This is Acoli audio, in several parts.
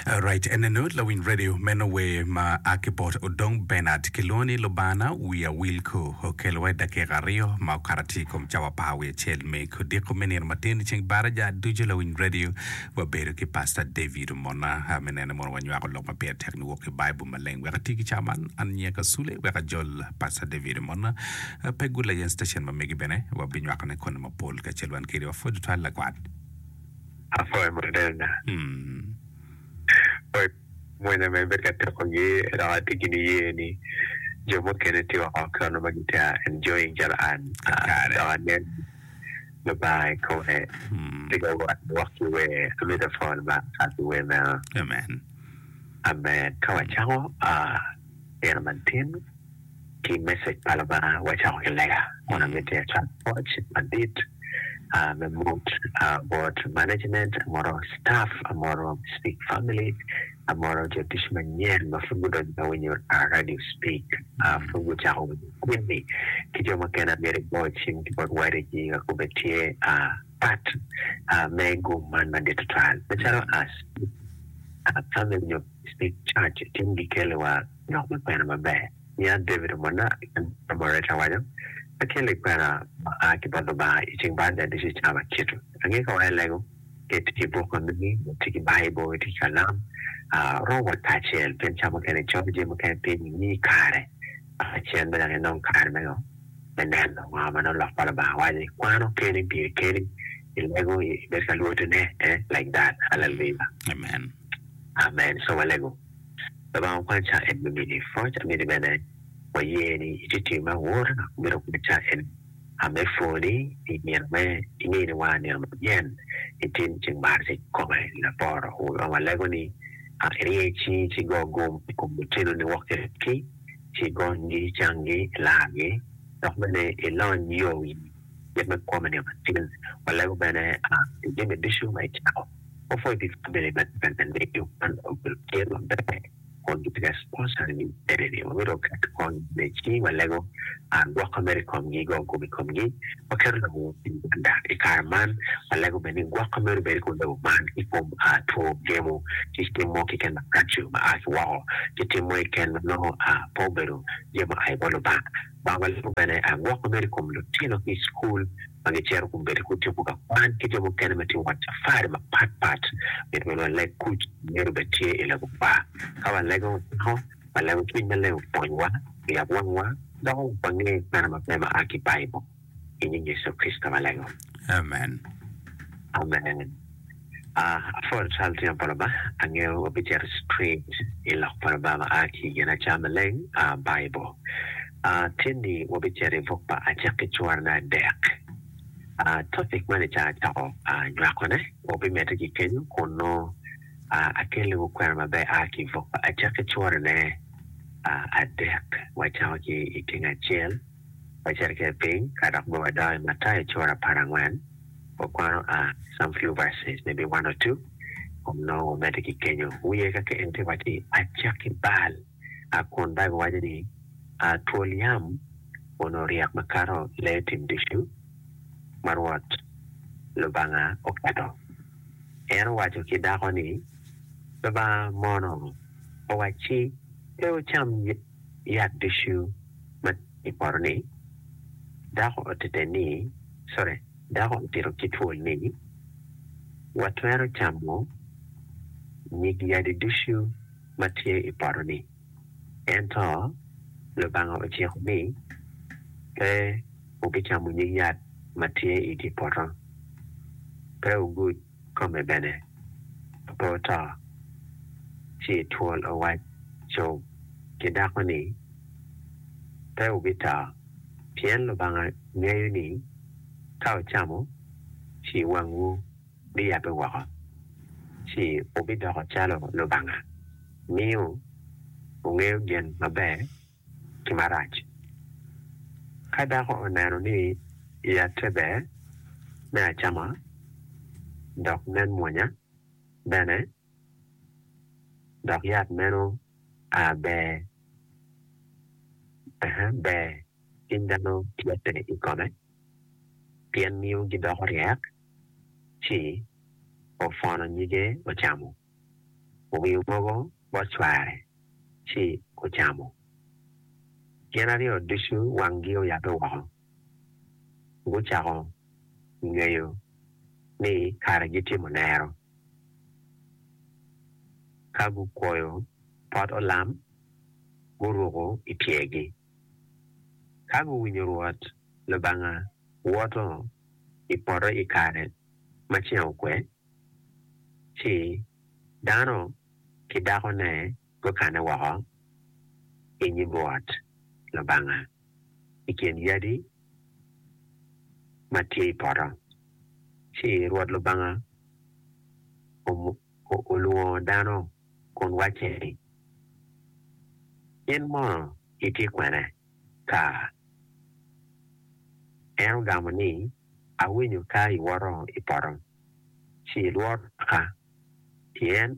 Alright, enenu lawiny radio meno wer ma a ki bot Odong Bernard kilwongo ni Lubana wiya wil ko okelowa i dakika aryo ma okato atir i kom cawa par wiye acel me kodiko me nino matin i ceng baraja ducu lawiny radio wabedo ki Pastor David Omona a me nene mono wanywako lok ma pire tek niwok ki Baibul maleng wek ati ki cawa man an nyinga Kasule wek ajol Pastor David Omona a, pe gula yen station ma megi bene wabinywakone koni mapol kacel wan kede wapwod tutwal lakwat. Afo e Moderna. Pwod mwonya mere bedo ka teko gi dok atye ki niye ni jo mukene tye woko ki ono ma gitye enjoying calo an dok anen Lubanga i kome tye ka wot wok ki wer. Amito pwony Lubanga kato ki wer meno. Amen. Ka wacako nino matin. ki message pa Lubanga wacako ki lega kun amitti acat pwoc madit me mut bot management amwoto staff amwoto speak family amwoto jo tic manyen ma pud gudonyo ma winyo radio speak pud gucako winyo kwini ki jo mukene amyero igo cim ki bot wadigi wek obed tye pat me gum man madit tutwal macalo family nyo Smith Church i tin gikeli wa lok me kwena maber niya David omona i kin dano ma reca waco akeli kwena ma a ki bot Lubanga i ceng baa dadici i cawa makitu ange ka wa i lego ket ki buk ma mini ma tye ki Bible tye ki kalam a rom wa kacel pien cawa mukene i cob jami mukene piny i ngi kare aka cen bene dok inong kare me ngo me neno ngo ma nongo lok pa Lubanga waco i kwano keni piri keni i lego i bed ka lwotine eh like that hallelujah. Amen. Amen Ica Walego Lubanga okwany ca en me mini pwoc amini bene waye ni itye tim me awor dok mito kwany ca eni ame pwo ni I nino me imini wa nino ma nyen itim cing mar cik kikome laboro wu Lubanga walego ni a irye ci ci go gum ikom lutino ni wok ki ki ci gony gi icang gi ilar gi dok bene ilony yo wi kit me kwo ma nino ma tin walego bene a pi jami ducu ma icako Opwoyo gin ma bedo bene ka nen ni yo man obedo tye maber kun gitye ka sponsor ni bene ni wamito oket kony me ci walego gwok ma medo i komgi, goyo gum i komgi. Waketo labongo i pii Uganda i kare man, walego bene ni gwok ma medo bedo ki olemo man ki kom two gemo ki cim mo keken maraco ma a ki woko ki tim mo keken ma nongo pe obedo jami ma oa i bot Lubanga. Bangwa lego bene aye gwok ma bedo i kom lutino ki i cukul ma gicito kun bedo ki otyeko ka kwan ki jo mukene ma tye ka wot cafari mapat pat. Myero bene waleg kuc ma myero obed tye i lagopa. Ka walego wacako ka lego cwiny maleng opwonywa, oyab wangwa, doko wa wange kwena maber ma a ki i Baibul. i nying Yecu Kricito ma leng ngom. Amen. Amen. Ah, apwol cal tyen pa Lubanga. Angeyo wabicito straight i Lok pa Lubanga ma a ki i Ginaca Maleng, ah, Baibul. Ah, tyen-ni wabicito i buk pa Acakki cura me adek. Ah, topic man i ca acako, ah, nywakone, wabimedde ki kenyo kun nongo, ah, akelliwu kwena maber a ki i buk pa Acakki curane, ah, adek, wacako ki i tyeng acel. wacit kwede piny ka dok bed wadok i Matayo cura apar angwen, wakwano a i some few verses, maybe one or two, kun nongo wamedde ki kenyo wiye ka keken ci wacce ni, Acak ki bal, a kun Baibul waco ni, a twol yam onongo ryek makato lee tim ducu ma Rwot Lubanga oketo. En owaco ki dako ni, Lubanga mono owacci pe wucam yat ducu? ma i poto ni, Dako otete ni, sorry, dako otito ki twol ni, Watwero camo nyig yadi ducu ma tye i poto ni, ento Lubanga ociko ni pe wubicamo nyig yat ma tye i dye poto, pe wugud kome bene, pe wuto. Ci twol owacco ki dako ni. pe wubito, pien Lubanga ngeyo ni ka wucamo, ci wangwu biyabbe woko, ci wubidoko calo Lubanga, miyo wungeyo gin maber ki marac. Ka dako oneno ni yatte ber me acama, dok nen mwonya bene, dok yat meno a ber, aa ber cing dano tye kwede i kome, pien miyo gidoko ryek, ci opwono nyige ocamo, owingo mogo bot cware, ci ocamo. Gin aryo ducu wanggi oyabbe woko, gucako ngeyo ni kare gitimo lero. Ka gukwoyo pot olam, guruko i pyergi. Ka guwinyo Rwot Lubanga woto i poto i kare ma ceng okwe, ci dano ki dakone, gukanne woko i nyim Rwot Lubanga i kin yadi ma tye i poto. Ci Rwot Lubanga olwongo dano kun wacce ni, In mono itye kwene? Ka en ogamo ni, Awinyo ka iwoto i poto, ci ilwor waka, pien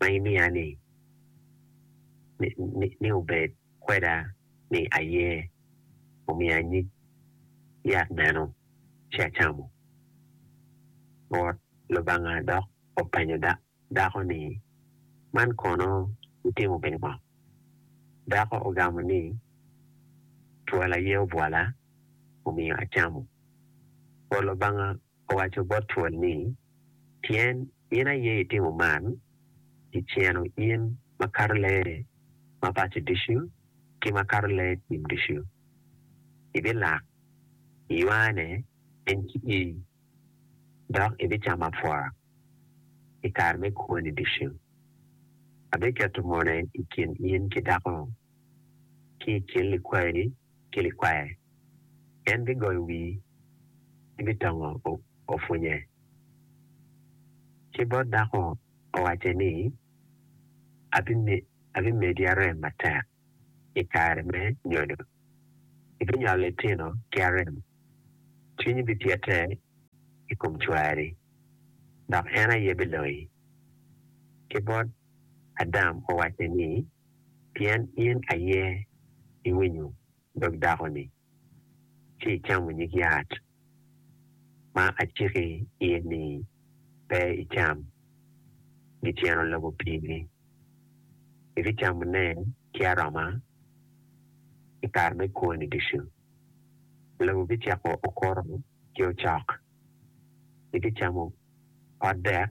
ma imiya ni ni obed kweda ni aye omiya nyig yat meno ci acamo. Rwot Lubanga dok openyo dako ni, Man kono itimo pi ngo? Dako ogamo ni, Twol aye obwola omiyo acamo. Rwot Lubanga owaco bot twol ni, Pien in aye itimo man, iceno in makato lee ma paco ducu ki makato lee tim ducu, ibilak iywane en ki ii, dok ibicamo apwora i kare me kwoni ducu. Abiketo mone i kin in ki dako-nu, ki i kin likwayi ki likwaye, en bigoyo wii ki bitongo opwunye. Ki bot dako owacce ni, Abimedi arem matek i kare me nyodo, ibinyolo litino ki arem, cwinyi bipyete i kom cwari, dok en aye biloyi. Ki bot Adam owacce ni, pien in aye iwinyo dog dako-ni, ci icamo nyig yat ma aciki in ni pe icam giceno lobo pigi. Ibicamone ki aroma i kare me kwoni ducu. Lobo bicako okuto ki ocok, ibicamo pot dek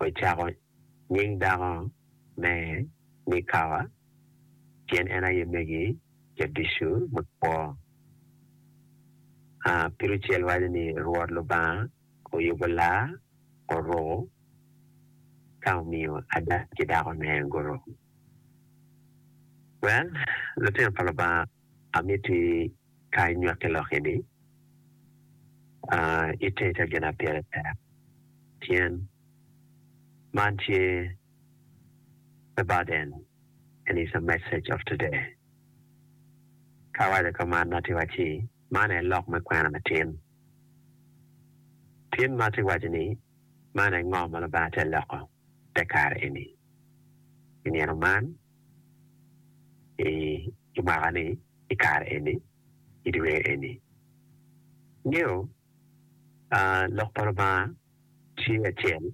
ocako nying dako me ni Kawa, pien en aye megi jaducu me kwo. Pirucel waco ni, Rwot Lubanga oyubo laa, oruko, ka omiyo ada ki dakone guruko. Well, lutino pa Lubanga. Amiti ka inywaki lok ini, ite ca gin apire tek, pien man tye the burden and is the message of today. Ka awaco ka man ma atye wacci, man aye lok me kwena me tin. Tin ma atye waco ni, man aye ngo ma Lubanga tye loko. te kare eni. I nino man, i mwaka ni, i kare eni, i dwe eni. Ingeyo Lok pa Lubanga tye acel,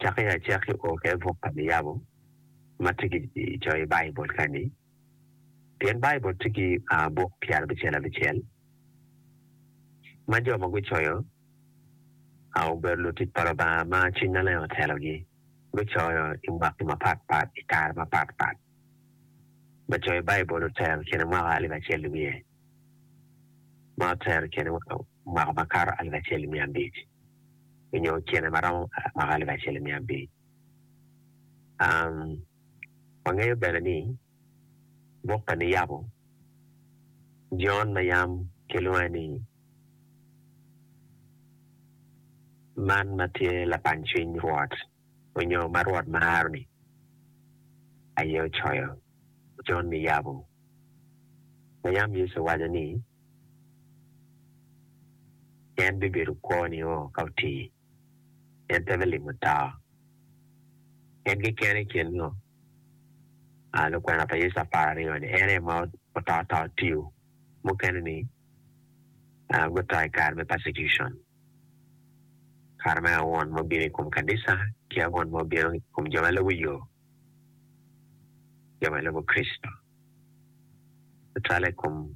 cakki acakki o ka i buk pa Niyabo ma tye ki coyo i Baibul ka ni. Pien Baibul tye ki buk pyera abicel abicel ma jo ma gucoyo obedo lutic pa Lubanga ma Cwiny Maleng otelogi, gucoyo i mwaki mapatpat i kare mapatpat. Lacoyo Baibul otero i kine mwaka alip acel nimiye ma otero i kine mwaka makato alip acel nimiya abic, nyo kine ma romo mwaka alip acel nimiya abir. Wangeyo bene ni buk pa niyabo Jon ma yam kilwonge ni Man ma tye Lapany Cwiny Rwot onyo ma Rwot Maro-ni aye ocoyo Jon niyabo ma yam Yecu owaco ni en bibedo kwo nio ka otii. en pe bilimo tawa. En keken i kin ngo lukwena pa Yecu apar aryo-ni en aye ma oto ata otiyo? Mukene-ni guto i kare me persecution, kare me awon ma obino i kom kanisa ki awon ma obino i kom jo ma lubo yo, jo ma lubo Kricito, tutwalle i kom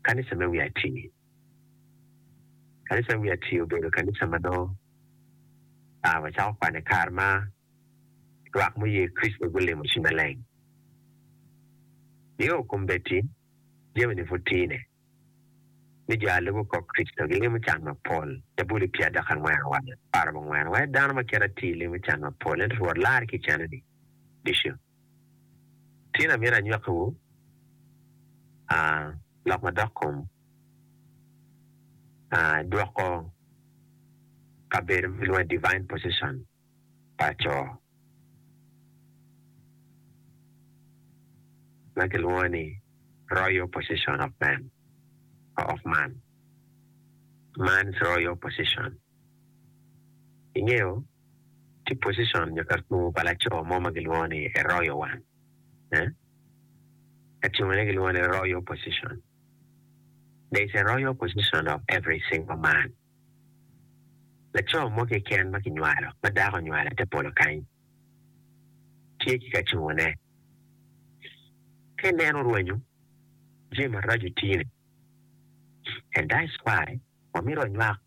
kanisa me wi atir. Kanica wiye atir obedo kanica ma nongo wacako kwane kare ma lwak ma oye Kricito gulimo ci maleng. Nio kombeddi jami-ni pud tine, ni jo a lubo kop Kricito gilimo can mapol. Zabuli pye adek angwen owaco ni, Para bongwena, wai dano ma kite atir limo can mapol, ento Rwot lari ki i cene-ni ducu. Tin amyero anywakkiwu lok madok kom dwoko kabedo ma kilwongo ni divine position pa co ma kilwongo ni royal position of man, man's royal position. Ingeyo, tye pocicon nyo ka tung pa laco mo ma gilwongo ni Arroyo wan, eh? Ka cengone gilwongo ni Royal Position. There is a Royal Position of every single man. Laco mo keken ma kinywalo, ma dako onywalo i te polo kany, tye ki ka cengone. Ka ineno rwenyo, jami maraco tye-ni. And that's why wamito wanywak.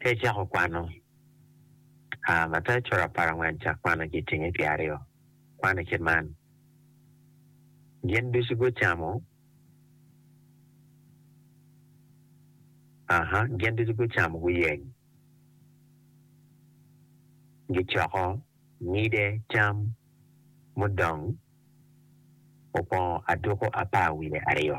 Ka icako kwano, a Mathayo coto apar angwen cak kwano ci itinge ki aryo. Kwane kit man, Gin ducu gucamo, a Gin ducu gucamo guyeng, gicoko ngide cam mudong okwongo aduku apar wiye aryo.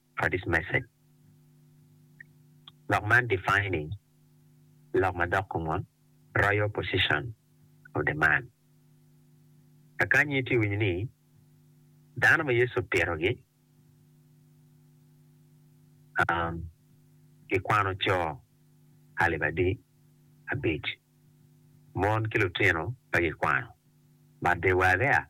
Curtis Message. Lok man defining lok ma dok kongon royal position of the man. Kakanyi itye winyo ni dano ma Yecu opito gi um gi kwano co alip adi abic, mon ki lutino pe gi kwano, but they were there.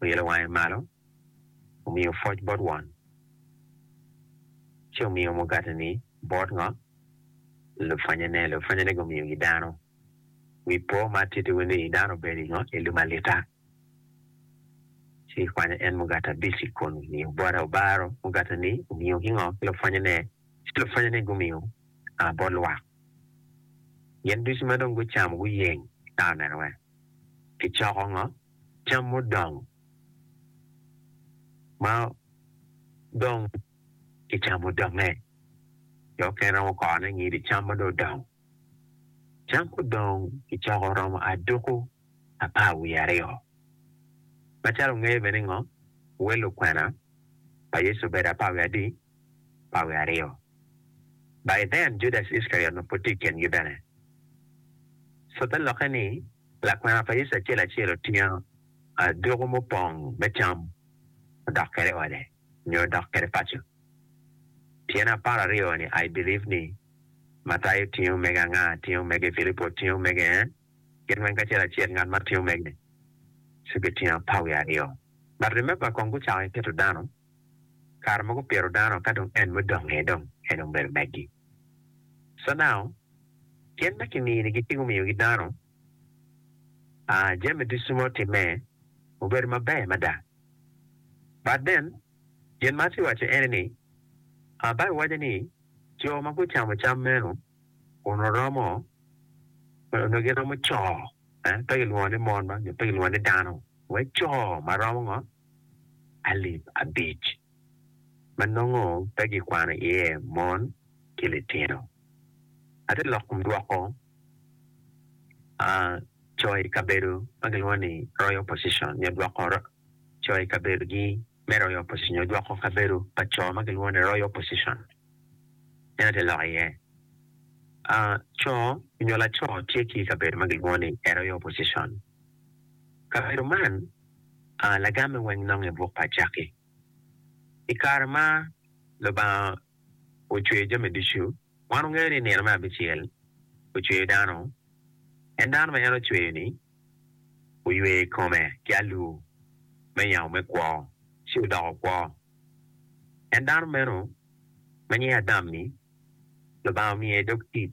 oilo wange malo, omiyo pwoc bot won, ci omiyo mugateni bot ngo? Lupwanyene. Lupwanyene gumiyogi dano. Wi po ma atittiwu ni, dano obedo i ngo? I lumalita. Ci kikwanyo en mugati abic i kun omiyo bote, obaro mugateni omiyo ki ngo? Ki lupwanyene. Ci lupwanyene gumiyo aa bot lwak. Gin ducu ma dong gucamo guyeng, ka oneno en, gicoko ngo? cam mudong ma dong kicamo dongnge, jo mukene romo korone ngido cam ma dong odong. Cam mudong kicoko romo aduku apar wiye aryo. Macalo wungeyo bene ningo, wel lukwena pa Yecu obedo apar wiye adi? Apar wiye aryo. By then, Judas Iskariot onongo pud tye i kingi bene. Cobbe lokke ni. Lakwena pa Yecu acel acel otingo adwogo mupong me cam odok kwede ode nyo odok kwede paco. Tyene apar aryo ni I believe ni, Matayo otingo omege anga? Tingo omege, Pilipo otingo omege ee, gin weng kacel acel ngat ma tingo omege ci gitingo apar wiye aryo. But remember kong gucako ki keto dano. kare ma gupito dano ka dong en mudongnge dong en dong bedo megi. So now gin ma kiminigi ci gumiyogi dano aa jami ducu ma otimme obedo maber mada but then gin ma atye waco ene ni aa Bible waco ni jo ma gucamo cam meno kun oromo onongo giromo co eh pe gilwongo ni mon ma nyo pe gilwongo ni dano wek co ma romo ngo alip abic, ma nongo pe gikwano iye mon ki litino. Ate lok kom dwoko a coyo i kabedo ma gilwongo ni Royal Opposition nyo dwoko coyo i kabedogi me Royal Opposition nyo dwoko kabedo pa co ma gilwongo ni Royal Opposition. En ate lok iye a co nyo laco tye ki i kabedo ma gilwongo ni Royal Opposition. Kabedo man. lagamme weng nongo i buk pa Acakki. I kare ma Lubanga ocweyo jami ducu, wan wangeyo ni i nino me abicel ocweyo dano, en dano ma en ocweyo-ni oyweyo i kome ki alur me yamo me kwo ci odoko kwo. En dano meno ma nyinge Adam-ni, Lubanga omiye dog tic.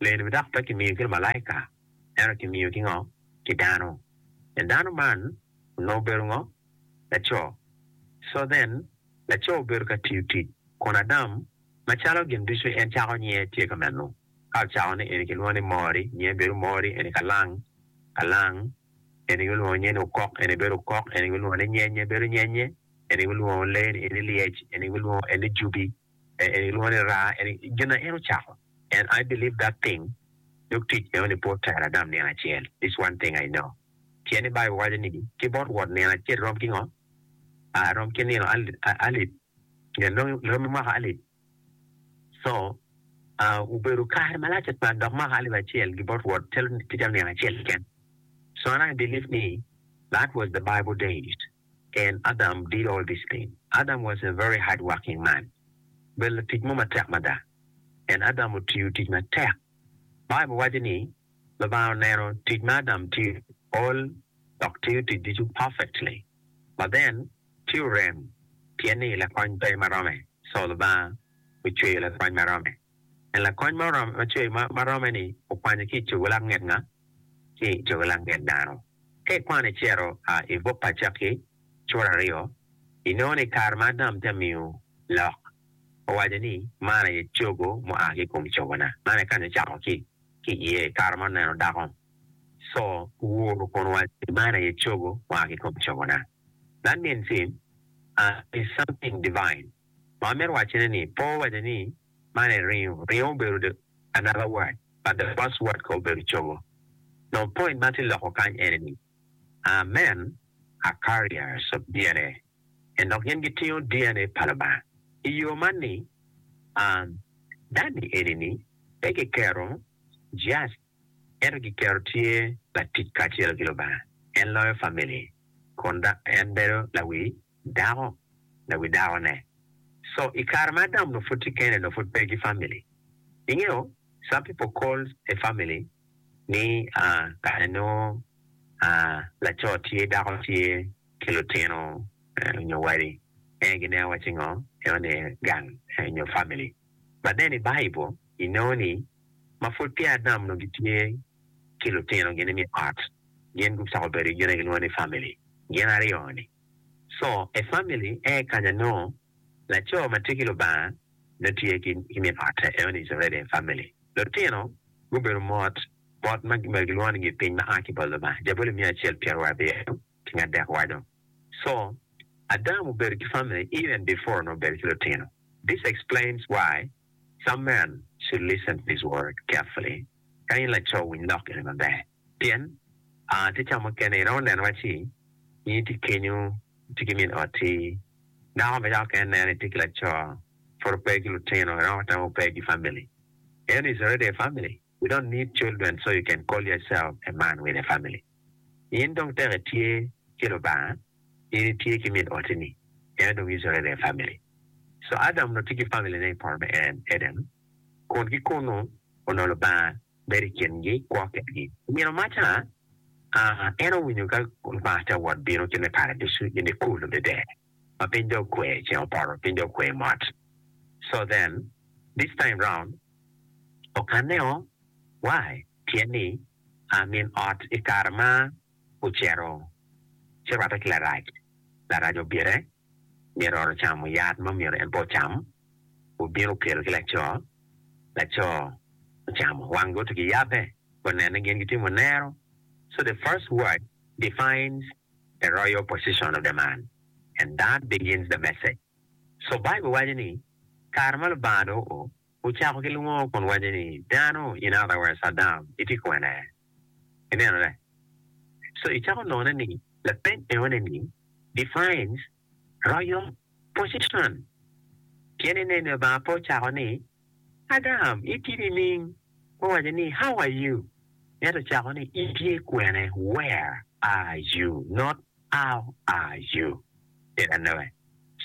Leroni dok pe kimiyo ki lumalaika, ento kimiyo ki ngo? Ki dano. En dano man onongo obedo ngo? Laco. So then, laco obedo ka tiyo tic, kun Adam, macalo gin ducu en cako nyinge tye ka meno, ka ocako ni eni kilwongo ni Mori, nyinge bedo Mori, eni Kalang, Kalang, eni gulwongo nyinge ni Okok, eni bedo Okok, eni gulwongo ni Nyenye, bedo Nyenye, eni gulwongo lee-ni eni Lyec, eni gulwongo eni Jubi. en ilwongo ni ra en gin na en ocako and I believe that thing dok tic meno ni pe otero Adam nino acel this one thing I know pien ni bible waco ni ki bot Rwot nino acel rom ki ngo a rom ki nino alip nyen dong romi mwaka alip so a obedo kare malac atwal dok mwaka alip acel gi bot Rwot calo nino acel keken so and I believe ni that was the bible days. En, Adam, did all these things. Adam was a very hard working man. Obedo latic mo matek mada. En, Adam, otiyo tic matek. Bible waco ni, Lubanga oneno tic ma Adam tiyo, all, dok tiyo tic ducu perfectly. But then, tye orem, pien ni lakony pe ma rome. So, Lubanga ocweyo lakony ma rome. En, lakony ma ocweyo ma rome-ni okwanye ki i cogo lak nget nga? Ki i cogo lak nget dano. Ka ikwano icito i buk pa Acakki cura aryo, inongo ni kare ma Adam tye ka miyo lok, owaco ni, Man aye cogo mua ki i kom cogona. Man aye kany ocako ki i iye i kare ma oneno dako. Co owuro kun owaco ni, Man aye cogo mua ki i kom cogona. That means, is something divine. Ma wamito wacone ni, pe owaco ni, Man en ringo. Ringo obedo the another word but the first word ko obedo cogo. Nongo point ma atye loko kany ene ni our men are carriers of DNA and dok gin gitingo DNA pa Lubanga. I yo man ni, um, dani eni ni pe kiketo just Ento kiketo tye latic kacelo ki Lubanga. En loyo famili kun en bedo lawi dako, lawi dako ne. So i kare ma Adam onongo pud tye kene onongo pud pe ki famili. Ingeyo some people calls a family ni kare onongo laco tye, dako tye ki lutino nyo wadi en gineno wacci ngo? Enoni gang nyo famili. But then i Bible inongo ni ma pud peya adam onongo gitye ki lutinogi ni me ot, gin gucako bedo gin aye gilwongo ni family gin aryo ni. So a family a kanya nongo laco matye ki Lubanga nongo tye ki min ote eno ni is already a family. Lutino gubedo mot mot ma gibedo gilwongo ni gipiny ma aa ki bot Lubanga, jabuli miya acel pyeraryo abiro ki ngadek waco. So adam obedo ki family even before onongo obedo ki lutino. This explains why Some men should listen to this word carefully, Ka in laco winy lok eni maber, pien a tye ca mukene iromo neno waci in itye kenyu itye ki min oti, dako ma yako kene neno ni itye ki laco pud ope ki lutino iromo tamo pe ki family, ento is already a family. We don't need children so you can call ya self a man with a family in dong tek itye ki Lubanga in itye ki min oti ni en odong yucu reve a family so Adam onongo tye ki family ne ipoto me en Eden kun ki kunu onongo Lubanga bedo ikin gi kwo ket gi omyero maca aa en owinyo ka Lubanga tye awot bino kit me paradicu in ikulu dede. ma piny dong okwe ceng opoto piny dong okwe mot so then this time round okanne o why pien ni aa min ot i kare ma ocito ci rwatte ki larac larac obite myero ot ocamo yat ma myero en pe ocam obino okelo ki laco laco ocamo wang gi otugi yabbe gonene gin gitimo nero so the first word defines the royal position of the man, and that begins the message. So Bible waco ni, Kare ma Lubanga dong ocako ki lwongo kun waco ni, Dano, in other words Adam, itye kwene? Ineno-le? So icako none ni lapeny enoni ni defines Royo, position, pien inen Lubanga pe ocako ni, Adam, itidi ining? Owaco ni, How are you? Ento ocako ni, Itye kwene? Where are you? Not how are you? Ket anonge.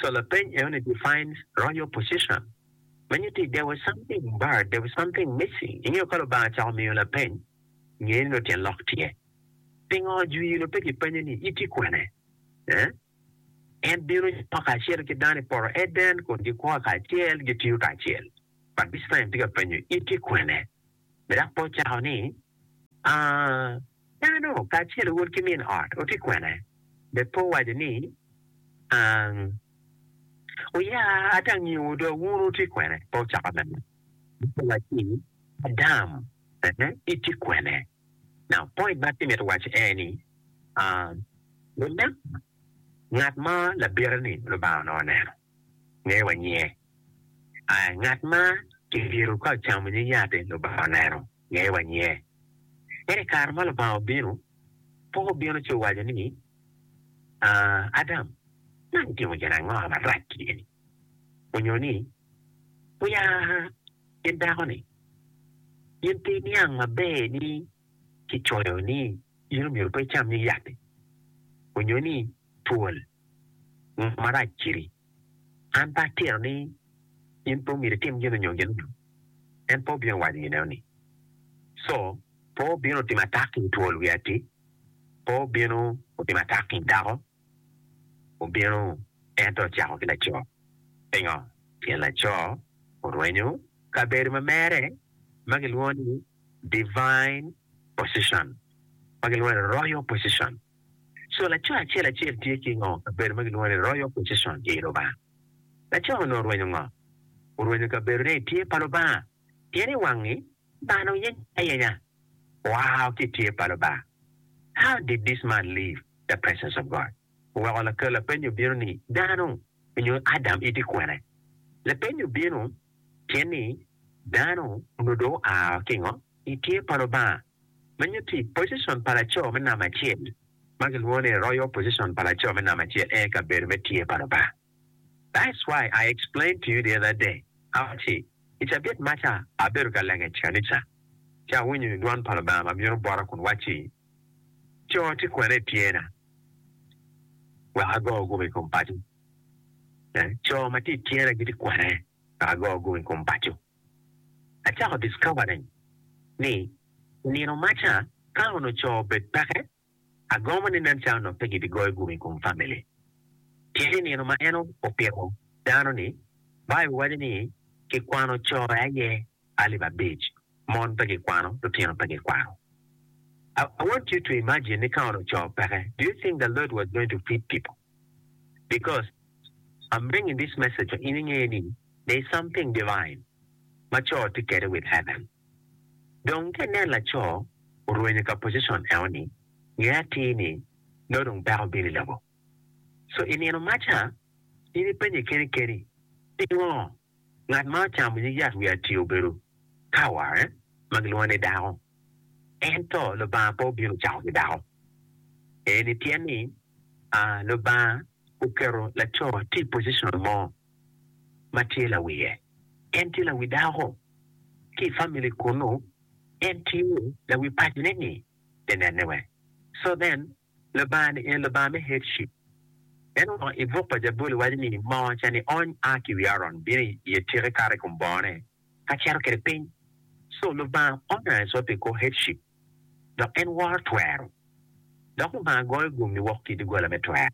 So lapeny enoni defines royo, position, ma nyuto ni there was something buried, there was something missing. Ingeyo ka Lubanga cako miyo lapeny, ngeni nongo tyen lok tye. Pingo Juilo pe gipenye ni, In tye kwene? Ee, en bino nyo kacel ki dano i poto Eden kun gikwo kacel, gitiyo kacel. But this time tye ka penyo, In tye kwene? Be dok pe ocako ni, Aa, dano kacel owod ki min ot, wutye kwene? Be pe owaco ni, Ang, wuya ata angiyowu do, wun wutye kwene? Pe ocako bene. Be pe owaco ni, Adam, ee, itye kwene? Now point ma atimito waco aye ni lunek ngat ma labite ni Lubanga onongo oneno ngeyo wa nyinge aye ngat ma kibito ka ocamo nying yati Lubanga oneno ngeyo wa nyinge ento i kare ma Lubanga obino poko obino ci owaco ni Adam man itimo gin ango marac eni onyo ni oya ki dako ni, In pe iniang maber ni kicoyo ni in omyero pe icam nyig yat-ti, onyo ni twol ngo marac kiri? An pe atito ni in pe omyero itim gin onyo gin onyo? En pe obino waco gineo ni, Co pe obino otimo atak ki i twol wiya-ti, pe obino otimo atak ki i dako. obino ento ocako ki laco. Pingo? Pien laco orwenyo kabedo ma mere ma gilwongo ni divine position, ma gilwongo ni royal position. So laco acel acel tye ki ngo? Kabedo ma gilwongo ni royal position i Lubanga. Laco-ni onongo orwenyo ngo? Orwenyo kabedone i tye pa Lubanga, pien i wangi Dano yenyo ayenya wao ki tye pa Lubanga. How did this man leave the presence of God? Weko lakel lapenyo bino ni, Dano onyo Adam iti kwene? Lapenyo bino tyen ni, Dano onyo do oa kingo? I tye pa Lubanga. Menyo ti position pa laco me namba acel, ma gilwongo ni royal position pa laco me namba acel, en aye kabedo me tye pa Lubanga. That's why I explained to you the other day awacci, I cabit ma ca abedo ka lenge i kanica, ci awinyo dwan pa Lubanga ma bino bota kun wacci, Co tye kwene i tyena? Wek ago gubo i kom paco. Eh, co ma tye i tyena gitye kwene? Wek ago gubo i kom paco. Acako discovering ni nino ma ca ka onongo co obed peke, Agomo ni nen calo dong pe gibigoyo gume i kom famili. Tye i nino ma en opiko dano ni, Baibul waco ni kikwano co aye alip abic, mon pe gikwano, lutino pe gikwano. I want you to imagine ni ka onongo co peke, do you think the Lord was going to feed people? Because I'm bringing this message for in inge ni there is something divine ma co tye kwede with heaven. Dong ka inen laco orwenyo ka position eno ni, nge atir ni nongo dong dako bino i lobo. So i nino maca, in i penyi keni keni, pingo ngat ma ocamo nyig yat wi atir obedo Kawa eh, ma gilwongo ni dako, ento Lubanga pe obino cako ki dako? Eni pien ni, a, Lubanga oketo laco tye i position mo. ma tye lawiye. En tye lawi dako ki i famili kunu. En tye lawi pacone-ni pi nenne wek. So then, Lubanga-ni en Lubanga me headship. En woko i buk pa Jabuli waco ni, Moo ca ni ony a ki i wi Aron, bino i etike kato i kom bongone, ka cito kwede piny. So, Lubanga onyo Ecod pi kor headship, dok en woro twero. Dok Lubanga goyo gum niwok ki i doggola me twero.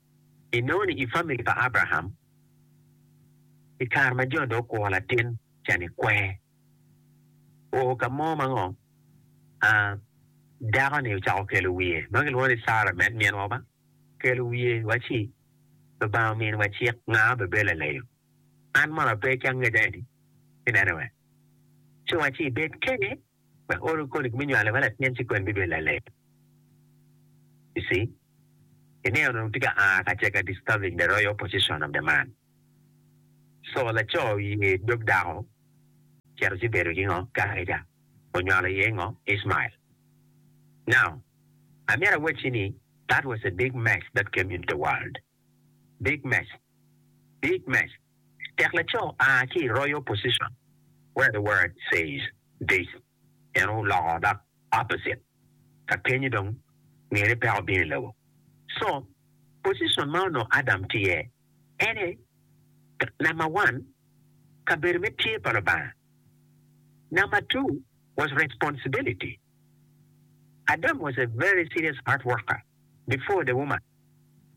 Inongo ni i famili pa Abraham, i kare ma jo dong gukwo latin ca ni kwer, o ka mo ma ngo? A Dako ni ocako kelo wiye, ma kilwongo ni Sara med minwa ba, kelo wiye wa ci, Lubanga omini wa cik, nga ma bebed laleyo? An mono ape ki angecca eni? Inene we ci wa ci ibed kene. wek olu koni me nywale ma latin ci kwen bibedo laleng. You see? Ineno onongo tye ka aa ka ceka disturbing the royal position of the man. So laco oye dog dako cito ci bedo ki ngo? Karaca onywalo iye ngo? Ishmael. Now, amyero awacci ni that was a big mess that came into the world. Big Mac Big Mac tek laco a ki i Royal Position where the word says this en oloko dok opposite ka kenyo dong ngene peya obino i lobo so position ma onongo Adam tye iye en aye number one kabedo me tye pa Lubanga number two was responsibility Adam was a very serious hard worker. Before the woman.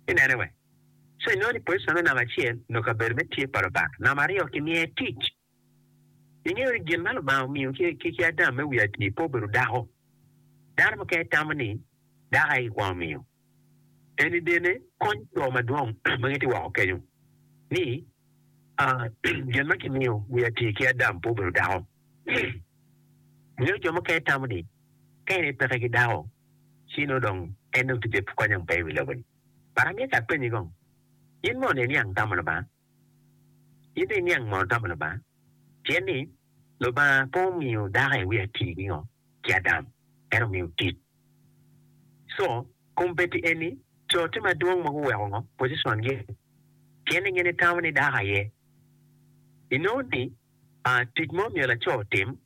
Inene wee. So inongo ni position me namba acel nyo kabedo me tye pa Lubanga, namba aryo kimiye tic. Ingeyo ni gin ma Lubanga omiyo ki ki Adam me wi atir pe obedo dako. Dano mukene tamo ni dako aye gikwongo miyo. Eni bene kony jo madwong ma gitye woko kenyo ni gin ma kimiyo wi atir ki Adam pe obedo dako. Ingeyo jo mukene tamo ni ka en aye peke ki dako. Ci nongo dong en dong tye bene konyang pe i wi lobo-ni. But amyero ki apenyi kong, In mono iniang tamo Lubanga? In dong iniang mono tamo Lubanga? Pien ni Lubanga pe omiyo dako i wi atir ki ngo? Ki Adam, en omiyo tit. Co, kombeddi eni, co tye madwong ma guweko ngo? Position-gi eni. Pien ni gin gitamo ni dako aye. Inongo ni, aa, tic ma omiyo laco otim,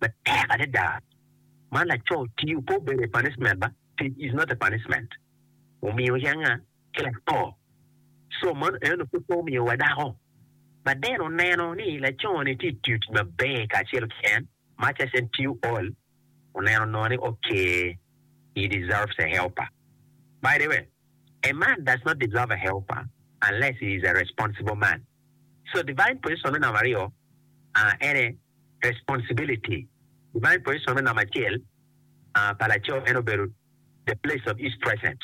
matek adada ma laco tiyo pe obedo a punishment ba tic is not a punishment omiyo yanga ki laco so mano eno pud pe omiyo wa dako but then oneno ni laco ni tye tiyo tic maber kacel ki en much as en tiyo all oneno nongo ni ok he deserves a helper by the way a man does not deserve a helper unless he is a responsible man. So divine position me namba aryo a ene responsibility, divine position me namba acel a pa laco en obedo the place of his presence,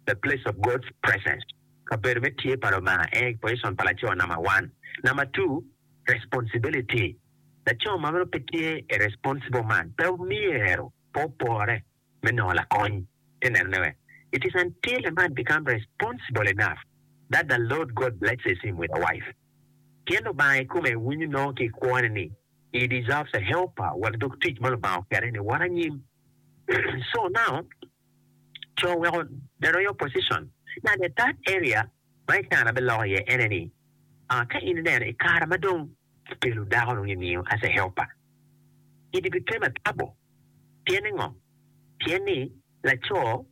the place of God's presence, kabedo me tye pa Lubanga ene position pa laco namba one. Namba two responsibility, laco ma nongo pe tye a responsible man pe myero pe opore. me nongo lakony te neno ne wek it is until a man become responsible enough that the Lord God blesses him with a wife pien Lubanga i kome winyo nongo ki i kwo ne ni he deserves a helper wek dog tic ma Lubanga okete ni wot anyim so now co weko the royal position now the third area ma i kare na be loko iye ene ni ah ka in i neno i kare ma dong ki kelo dako nongo i miyo as a helper it became a trouble. Pien ningo? Pien ni laco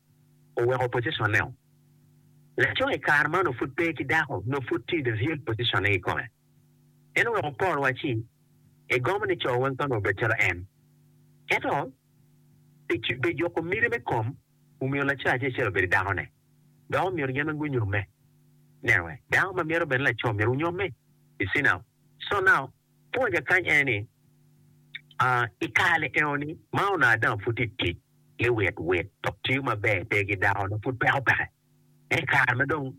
oweko pociconne-o. Laco i kare ma onongo pud pe ki dako nongo pud tye i the real pociconne kikome. En oweko Paul wacci, Egomo ni co weng pe onongo obed calo en. Ento, pi pi juko miti me kom, omiyo laco acel acel obedo i dakone. Dok omyero gin weng gunyomme. Neno-e, dako ma myero obed ni laco myero onyomme. You see now? So now. Pwonya kany en ni, I kare enoni ma onongo dong apud tye ka tic ki wit wit dok tiyo maber pe ki dako dok pud peko peke, ento i kare ma dong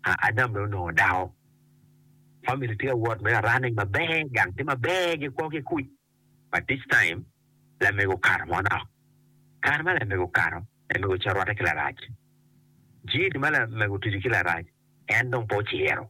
Adam dong onongo dako, famili tye ka wot me a running maber, gang tye maber, gikwo ki kuc. But this time, lamego okato manok. Kare ma lamego okato, lamego ocito orwatte ki Larac. Jiri ma lamego otuco ki Larac, en dong pe ociro.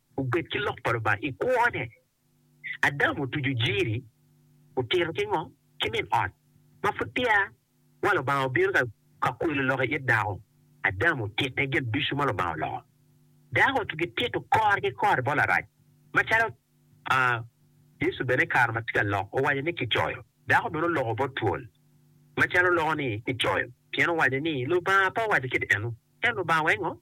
Gubed ki lok pa Lubanga i kwone. Adam otuco jiri, otito ki ngo? Ki min ot. Ma pud peya wa Lubanga obino ka ka kwelo lok i it dako, Adam otite gin ducu ma Lubanga oloko. Dako to ki tito kore ki kore bot Larac. Ma calo a Yecu bene i kare ma tye ka lok owaco ni kicoyo, dako bene oloko bot twol ma calo loko ni kicoyo, pien owaco ni Lubanga pe owaco kit eno. Ento Lubanga weko ngo?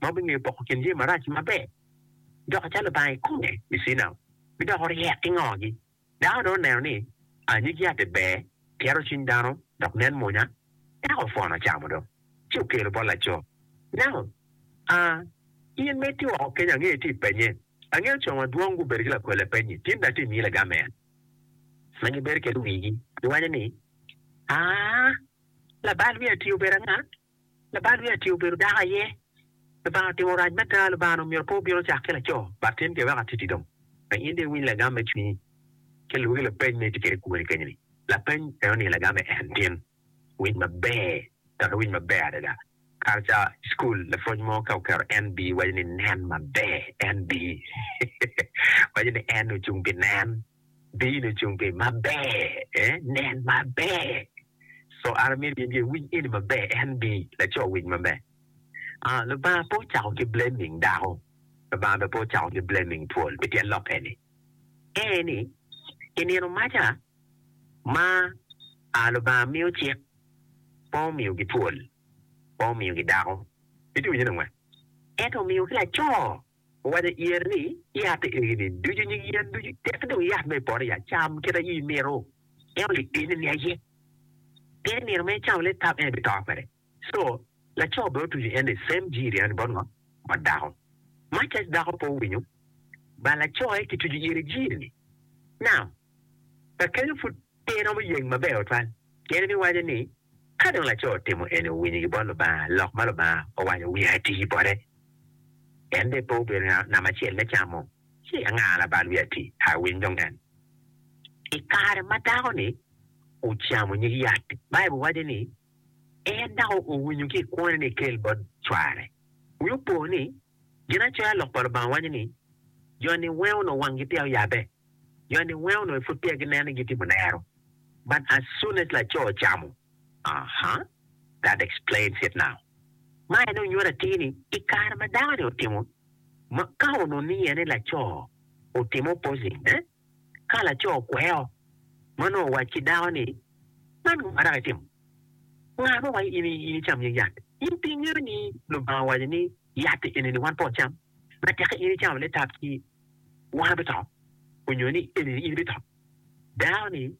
ma wubingeyo poko kin jami marac ki maber, dok acalo Lubanga i kome i Cina bidoko ryek ki ngogi. Dako dong oneno ni a nyig yat-ti ber, tyero cwiny dano, dok nen mwonya, eka opwono ocamo dong, ci okelo bot laco. Nako a in ma itye woko kenya angeyo itye i penye, angeyo co madwong gubedo ki lakwele penyi, tin dong atye miyi lagamen ma gibedo kede wigi, giwaco ni, Aa, labal wiya-ti obedo anga? Labal me Aci obedo dako aye. Lubanga otimo rac me daa, Lubanga-ni omyero pe obino cak ki laco. Bat tim ke wek atiti dong. Wek in dong iwiny lagam me cwinyi. Ki lwoki lapeny ma itye kwede i kuboni keny-ni. Lapeny en oningo lagamme en, Tin, wic maber, dok iwiny maber adada. Kare ca i cukul, lapwony mo ka oketo NB, waco ni nen maber. NB, waco ni N ocung pi nen. Bino i cungi maber, ee, nen maber. So an amito in bene iwiny eni maber, eka nibi laco wic maber. Aa, Lubanga pe ocako ki blaming dako, Lubanga bene pe ocako ki blaming twol pi tyen lok eni. Ee ni, i nino maca ma aa Lubanga miyo cik, pe omiyogi twol, pe omiyogi dako, ituwinyo ni ongwen? Ento omiyogi laco Owaco i iye ni, Yat egini ducu nyig yen ducu tek dong yat ma i poto ya, cam kit aye imito. En olipiny ni, Ni aye! Pien i nino ma icamo leb tam en ibito kwede. Co. Laco bene otuco en ni, Sem jiri eno ni bot ngo? Bot dako. Ma cac dako pe owinyo, ba lacoe kituco ire jiri ni, Nam, kakenyo pud Pe iromo yeng maber tutwal. Pien ibiwaco ni, 'Ka dong laco otimo eni, owinyo gibot Lubanga, lok ma Lubanga owaco wiye ati bote. En dong pe obedo namba acel me camo, ci anga labal wiye ati? A Winy dong en. I kare ma dako-ni ocamo nyig yat-ti, Baibul waco ni, En dako owinyo ki i kwone ni ekel bot cware. Wi opo ni, Ginacoya lok pa Lubanga waco ni, Jo niwenge onongo wanggi peya oyabbe, jo niwenge onongo i pud peya gineno ni gitimo lero, but as soon as laco ocamo, uh-huh, that explains it now. Ma en aye onyuto atir ni i kare ma dako-ni otimo, ma ka onongo ni en aye laco otimo opposing, eh? Ka laco okweo, mon onongo owac ki dako ni, 'Man ngo ma dok itimo? Nga ma owaco in icam nyig yat? In pe ingeyo ni Lubanga owaco ni yat eni-ni wan pe wacam? Ma tek-ki in icamo litap-ci, wan bito, onyo ni eni-ni in bito? Dako-ni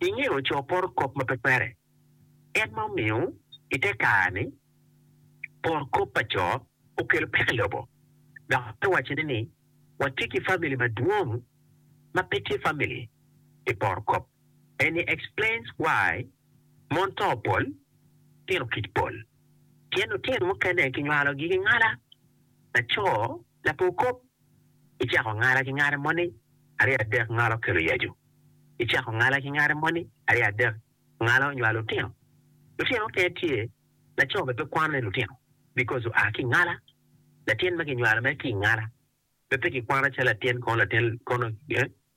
inge ocoo poro kop ma pe kwere, en ma omiyo i te kare-ni poro kop pa co okelo pek i lobo, dok te wacone ni watye ki famili madwong ma pe tye famili pi poro kop. And he explains why mon too pol, tino kic pol, pien lutino mukene kinywalogi ki ngala, laco lapor kop Icako ngala ki ngale moni, aryo adek ngalo kelo yacu. Icako ngala ki ngale moni, aryo adek ngalo nywalo lutino. Lutino mukene tye, laco bene pe kwano ni lutino because oa ki ingala. Latin ma kinywalo mere ki ingala bene pe kikwano calo latin kono latin kono eh.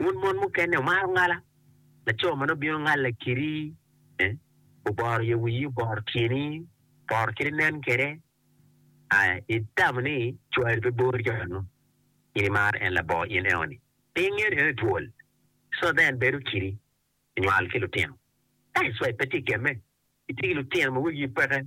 Wun mon mukene wumaro ngala, laco ma nongo bino ngalla kedi ni, Oboro yo wiyi, oboro tyeni, oboro kit inen kwede. A Itamo ni cwari pe bori calo meno, in imaro en labongo in eno-ni? Pe ingeto en otwol, so then bedo kidi inywal ki lutino? That's why pe tye gemme itye ki lutino ma wegi peke.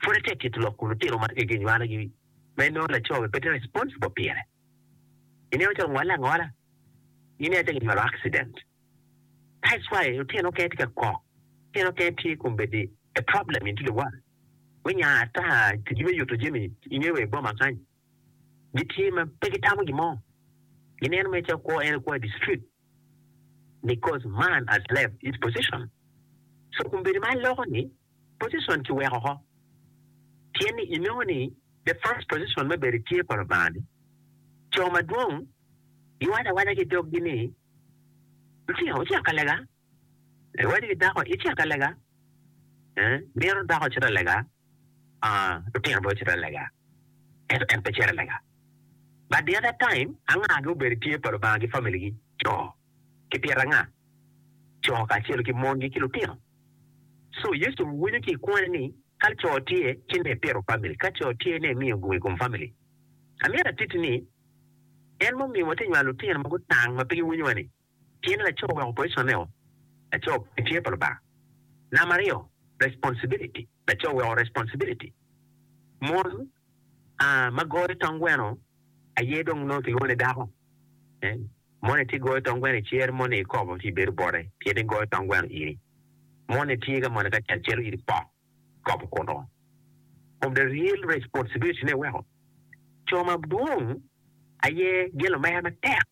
Pud atye kit lok kun lutino ma twegi onywalogi ma inongo laco bene pe tye responsible pire. Ineno calo ngole angola gin aye calo ginywalo accident. That's why lutino mukene tye ka kok, lutino mukene tye kombeddi a problem into the world. Wenya ata ticgi me yuto jami inge wa i boma kany. gitye ma pe gitamo gin mo, gineno mere calo kwo en aye kwo i district because man has left his position. So kun bedo ma aloko ni position ki weko oko tyen ni i nongo ni the first position me bedo tye pa Lubanga ni co madwong giwaco awaca ki dog gi ni, Lutinga wucito ka lega. Iwaco ki dako, Icito ka lega? Mito dako ocit ka lega? Aa, lutino bene ocito ka lega, ento en pe cito ka lega. But the other time, angagi obedo i tye pa Lubanga ki family gi, co ki pyeta anga, co kacelo ki mongi ki lutino. So Yecu winyo ki i kwone ni ka co tye ci ne pito family, ka co tye ne miyo gung i kom family. Amyero atitti ni, en ma omiyo watye nywalo lutino ma gutang ma pe giwinyowa ni, Tyen laco oweko personeo, laco pe tye pa Lubanga. Namba aryo, responsibiliti, laco oweko responsibiliti. Mon a ma goyo tong gweno aye dong nongo kilwongo ni dako. Moni tye goyo tong gweno icer moni ikobo ci ibedo bote pien ni goyo tong gweno iri. Moni tye ka moni kacel celo iri pok ikobo kuno. From the real responsibiliti ne weko co madwong aye gin lumere matek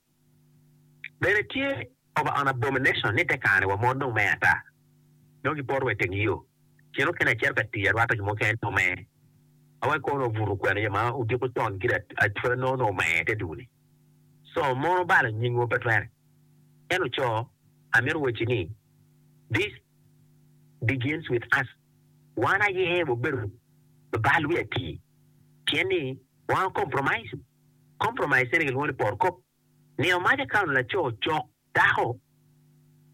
Bene tye over an abomination ni te kare-ni wa mon dong mer ata, dong gipoto wa i teng yo cen okene acito ka tic arwata jo mukene te omer. Awaci kono obuto kwena jo ma odiko con gire atwere nongo nongo omer te dul-li. So mon obalo nyingwa pe twere. Ento co, amito wacci ni this begins with us, wan aye wabedo babal wiye atir pien ni wan o compromise. Compromise eni gilwongo ni poro kop. Niyo mac akato laco cok dako,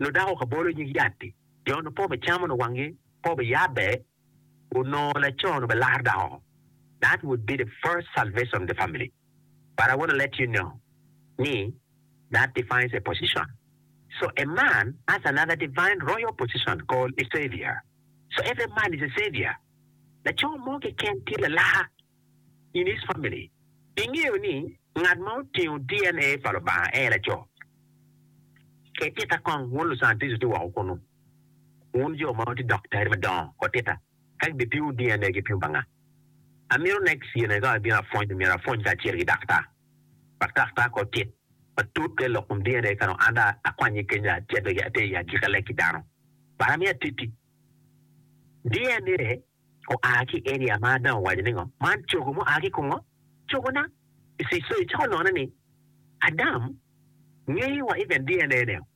nyo dako ka bolo nyig yat-ti. Jo onongo pe obicamo nyo wangi pe obiyabbe, onongo laco onongo obilar dako oko. That would be the first salvation of the family. But I want to let you know ni that defines a position. So a man has another divine royal position called a savior. So every man is a savior. Laco mo keken tye lalar. In is family ingeyo ni ngat ma otingo DNA pa Lubanga aye laco? Ket tika kong wun lucantico tye woko kunu. Wun jo ma wutye doktari madongo kot tika ka gibipimu DNA gipimu pa nga? Amito next year ka abino apwony myero apwony kacel ki daktar wek daktar kot tit matut ka ilok kom DNA ka dong anda akwanye kenya ci ater i agika lek ki dano but amito atit ki DNA. oa ki Elia ma Ada owaco ni ngo? Man cogo mua ki kungo? Cogona? Icico icako none ni Adam ngeyo wa even DNA ne o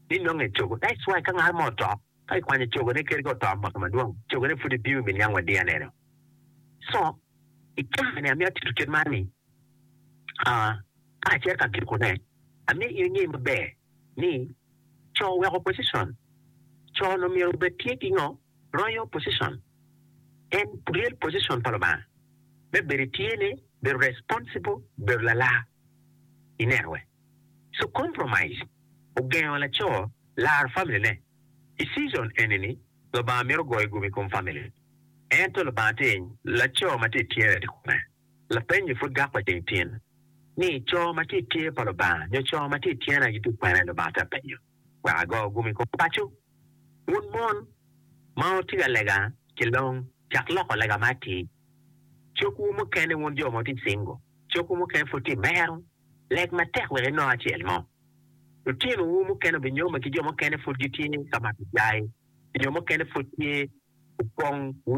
ni nongo en cogo that's why ka ngat mo oto ka kikwanyo cogo ne keri ka oto mwaka madwong cogo ne pud ebiyo me niang wa DNA ne o so icaka ni amito tito kit man ni aa ka acito ka giko ne amito in inge maber ni co weko position co no myero obed tye ki ngo Royal position en real position pa Lubanga me bedo i tyene, bedo responsible, bedo lalar. I neno we? So compromise ogengo laco laro family ne. I season eni ni Lubanga mito goyo gum i kom family. Ento Lubanga tye ing? Laco ma tye i tyene tye kome? Lapenyo pud gak pa ceng tyen ni, Co ma tye i tye pa Lubanga nyo co ma tye i tyena gitye kwene? Lubanga tye apenyo. wek ago gum i kom paco. Wun mon ma wutye ka lega ki long, cak loko lega ma atir. Cogwu mukene, wun jo ma wutye cingo, cogwu mukene pud tye mero, leg matek wek inong acel mo. Lutinowu mukene obinyome ki jo mukene pud gitye ka mato cai, nyo mukene pud tye opong wiye.